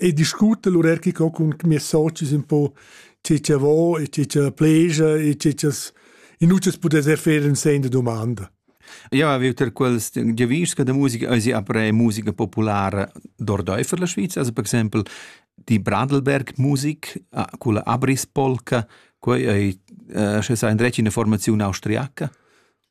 e discuta l'urerchica cun mias socis un po tge cha vo e tge cha pleja e tge chas in utas pudesser fer in sen da domanda. Io avevo ter quels giavischs che da musica esi après musica populara d'ordeifer la Sviza, also per exempel die Bradelberg-Musik ah, con la Abrispolka, quei ei, eh, sche sa in dretg in formazione austriaca.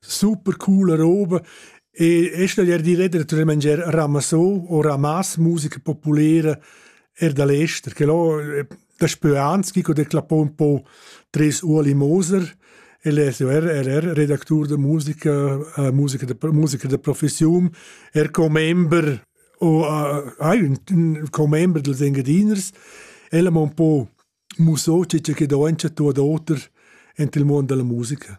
Super coola roba e e staglier dir ed er tuot mangier ramassò o ramas musica populera er da l'ester che là daspö ans chi ho declapò ün po tres Ueli Moser el es er er er redactur da musica uh, musica da musica da professiun er commember o uh, hai ün, ün commember dels Engadiners el am ho un po mussò che che do ün chatto ad oter ent il muond da la musica